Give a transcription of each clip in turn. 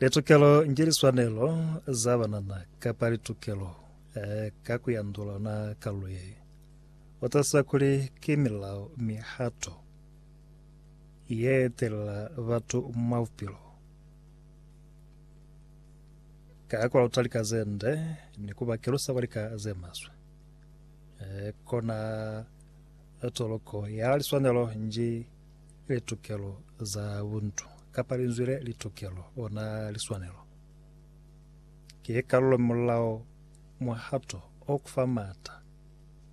Litukelo nge liswanelo za banana kapa litukelo eh, ka ku yandula ona kalulo ye o tasisa kuli ki milao mihato ye telela batu mwa bupilo. Ka ku lauta lika ze nde ni ku ba kelusa kwa lika ze maswe, eh, kona toloko ya liswanelo nji Litukelo za buntu, kapa linzwi le litukelo, ona liswanelo, ki kalulo mulao, muhato o kufa maata,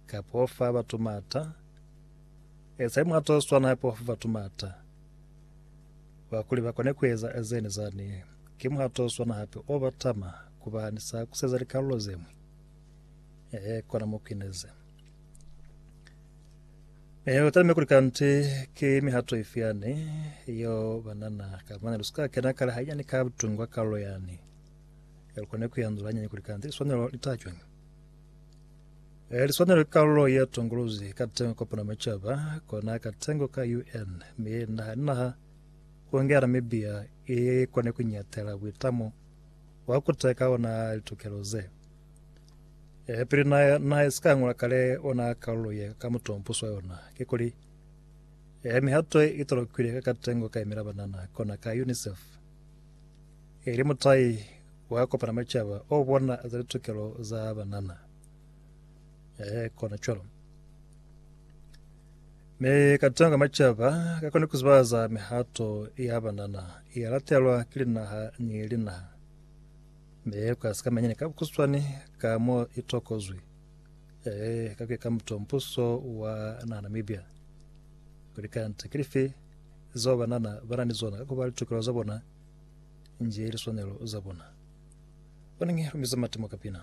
kapa o fa batu maata. Ezai muhato o swana hape wa fa batu maata wa kuli ba kone kueza zene zani. Ki muhato o swana hape o batama kuba ni sa kuseza likalulo zemwi. Ehe, kona mo kuineze. Eh, u talime kuli kanti ki mihato ifi yani yo banana ka mane lu sika kena kale ha yani ka butungwa ka lo yani ya lukone ku yanzula yani kuli kanti liswanelo li ta jwang eh liswanelo ka lo ya tongolozi ka tengo kopana machaba kona ka tengo ka UN me naha naha ku ngera Namibia e kone ku nyatela buitamo wa ku teka ona litukelo ze E, pili na, na si ka ngola kale ona kalulo ye ka mutompuso wa yona, ki kuli, e, mihato i tolokwile ka katengo ka imela banana, kona ka UNICEF, ili mutai wa kopana macaba o bona za litukelo za banana. E, kona cwalo. Mi katengo ka macaba ka kone kuzibaza mihato ya banana, ya latelwa ki linaha ni linaha. Mi ku ka sika manyani ka bukuswani ka mo i tokozwi, e, ka kuya ka muto mbuso wa na Namibia, kuli kanti ki lifi zeo banana ba na ni zona ka kuba litukelo za bona nje liswanelo za bona. Bonangi lu miza matimo ka pina.